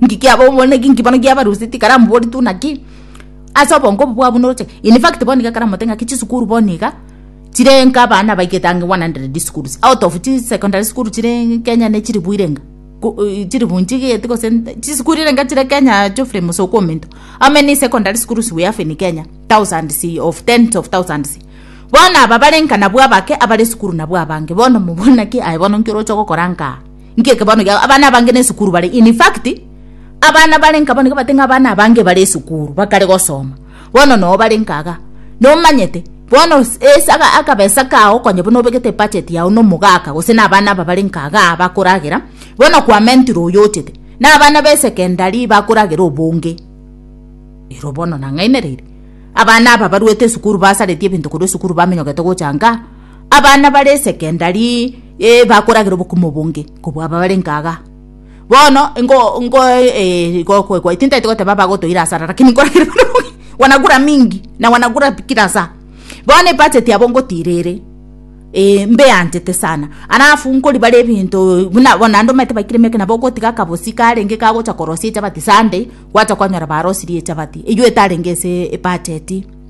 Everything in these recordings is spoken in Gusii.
Inki kiaba omonegi? Inki bono giabarusia tikaramu bori tu naki ase obongo obo bwabo noroche. In fact bono iga karamote ng'aki chisukuru bono iga chirenga abana abaigete ange 100 schools out of chi secondary school chire Kenya ne chilifu irenga ku eh chilifu nchigete gose chisukuru irenga chire Kenya Geoffrey Musoku Omento. How many secondary schools we have in Kenya? Thousands of tens of thousands. Bono aba barenga nabwo abake abare esukuru nabwo abange. Bono mobore naki aye bono inki oroche gokora nkaa? Nki eke bono gia abana abange ne esukuru bare? In fact, abana bare nka bono gabate ng'a abana abange bare esukuru bakare gosoma. Bono noo bare nka iga. Nomanyete, bono ase aka akabesa kao konya buna obegete ebudget yao na omogaka gose na abana aba bare nka iga bakoragera, bono kwamentire oyo ochete, na abana be secondary bakoragera obonge. Ero bono nang'ainereire. Abana aba baruete esukuru basareti ebinto korwa esukuru bamenyogete gocha nka. Abana bare esekendari bakoragera obokumu obonge kobua aba barenge igaa. Bono ingo ingo gokwegwa tintaeti goteba bagotoira asara rakini nkoragera buna bobe wanagura mingi na wanagura kila saa. Bono ebudget yabo ngotira ere ee mbeanchete sana alafu nkoribara ebinto buna bono naende omanyete baikire ime eke nabo ogotiga akabosi karenge kagocha korosia echabati Sunday gwacha kwanyora barosirie echabati eywo etarenge ase ebudget.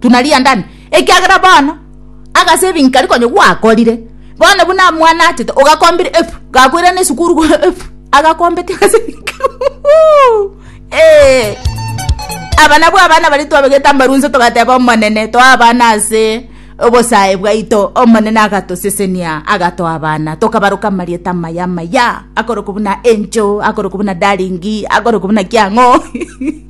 tunaliandane, ekiagera bono agasaving karia konya gwakorire, bono buna amwanachete ogakombire efu, gakoirana esukuru go efu, agakombetia agasaving karia eeh. Aba nabwo abana baria twabegete amarunso togateba Omonene, toa abana ase obosae bwaito, Omonene agatosesenia, agatoa abana, tokabaroka amarieta amaya amaya, akorokwa buna Angel, akorokwa buna Darling, akorokwa buna kiang'o.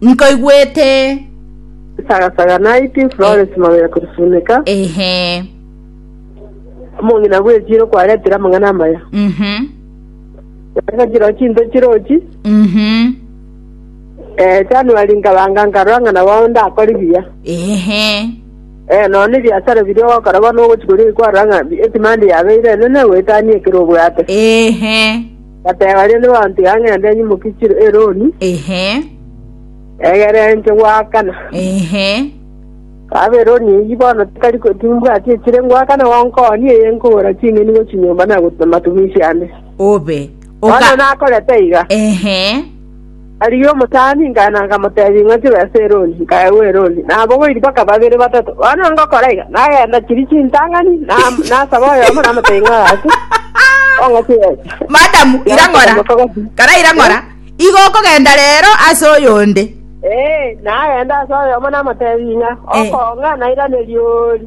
Nkoigwete. Saga saga naiti Florence Mabera Kurusunika. Ehe. Omong'ina bw'echiiro kwaretire amang'ana amaya. Mhm. Naende chiro chinto chirochi. Mhm. Eh, January nkabanga nkarora ng'a nabo ndakore buya. Ehe. Eh, nonya ne biasara biria ogokora bono ogochia koria kwarora ng'a bi- edemand yabeire enene goetania ekero obwate. Ehe. Bateba rende banto ya ng'ende enye mokechire eroni, Ehe, egerenche goakana. ehe, Kaba eroni eyio bono tikari ko- timbwati echire ngoakana gonkoonia eye nkogora ching'eni gochia nyomba na gotuta matumisi ande. obe. Bono Oka- nakorete iga. Ehe, Aria omotaani nkana nkamotebia, Ing'o chibe ase erori? Nkaegwa erori, na abogoiri bakaba babere batato. Bono ngokora iga, nagenda chiria chintang'ani, nasaba oyomo, namotebia, Ing'o agache, ong'ache gocha. Madamu, ira ng'ora. Kara ira ng'ora. Igo okogenda rero ase oyonde. Ee, nagenda ase oyomo namotebia, Ing'a, okong'a, nairaneria oori.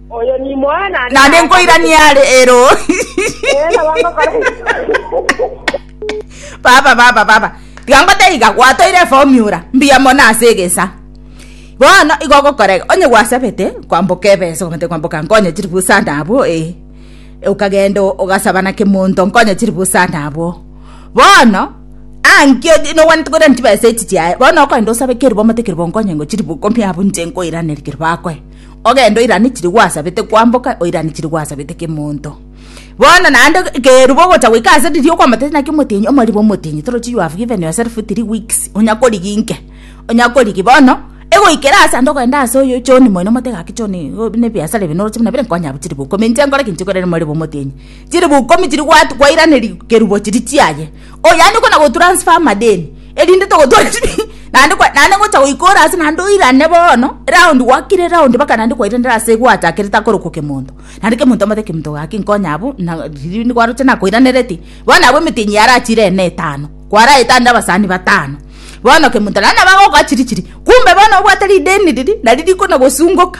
Oyo nimoyo naende Naende nkoiranie are ero. Ee, nabo ngokora baba baba baba tiga ngoteiga gwatoire eformula mbuya mono ase egesa bono igo gokorega onye gwasabete kwamboka ebesa kwamate kwamboka nkonye chiri busa nabo e ukagenda ugasaba na kimonto nkonye chiri busa nabo bono ankio nogwanete koira ntibesa echi chiaye bono okogenda osabe keri bomate keri bonkonye ngo chiri bukomia abu nche nkoiraneri keri bakoe Ogende oirane chiria gwasabete kwamboka, oirane chiria gwasabete kemonto. Bono naende keruba ogocha goika ase riria okwambatete naki omotienyi, omoribe omotienyi torochi you have given yourself three weeks, onya korigia inke, onya korigia bono egoikera ase ande ogende ase oyo John moino omote gaki John igo buna ebiasara ebi noroche buna bire nkonye abwo chiribu ikomi inche nkore ki? Inche nkorere omoribe omotienyi chiribu ikomi chiria gwatu kwairaneria kerubo chiria chiaye. Oh yaani okona go transfer amadeni erinde togotwara naende kwa naende ngocha goikora ase naende oirane bono round gwakire round baka naende kwairana ase gwatakire takoroka kemonto naende kemonto amate kemonto gaki nkonya abwo na riria nikwaroche nakoiranereti bono abwo emetenyi yarachire ene etano kwaraete ande abasani batano bono kemonto naende nabo agokoa chiri chiri kumbe bono obwate rideni riria nari rikona gosungoka.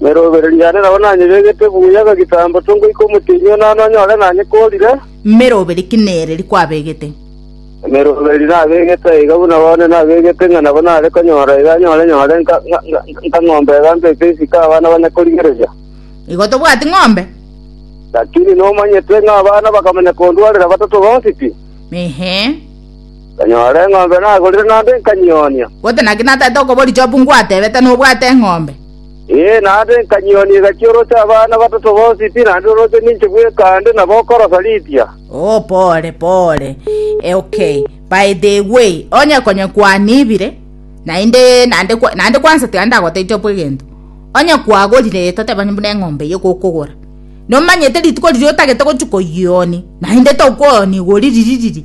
Ne robereria yane nabo nanyebegete buya gegitambo to ngoika omotienyi one ane onyore nanyekorire. Meroberi ki nere rikwabegete? Meroberi nabegete aiga buna bono nabegete ng'a nabo nare konyora iga anyore nyore nka nka ng'ombe iga mbeke isiko abana bane korigereria. Igo tobwati ng'ombe. Lakini nomanyete ng'a abana bakamanya kondwarera batato bonsi pi? Ehe. Tonyore eng'ombe nagorire naende nkanyionia. Gose naki nataete okobori Job ngwatebete nobwate eng'ombe? Ee, naende nkanyionia egachia oroche abana batato bonsi pi naende oroche ninche bweka ande nabo okorosa riitia. Oo pore pore eh okay by the way onye konye kwanibire naende naende kwa naende kwansa tiga ndagotebi Job egento onye kwagorire toteba onye buna eng'ombe eye gokogora nomanyete rituko riria otagete gochia koyioni naende tokoyoni igori riri riri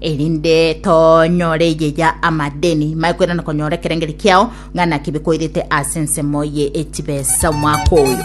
erinde tonyore eyeyia amadeni maekwera na konyora ekerengeri kiao ng'a naki bikoirete ase ensemo ye echibesa omwaka oyo.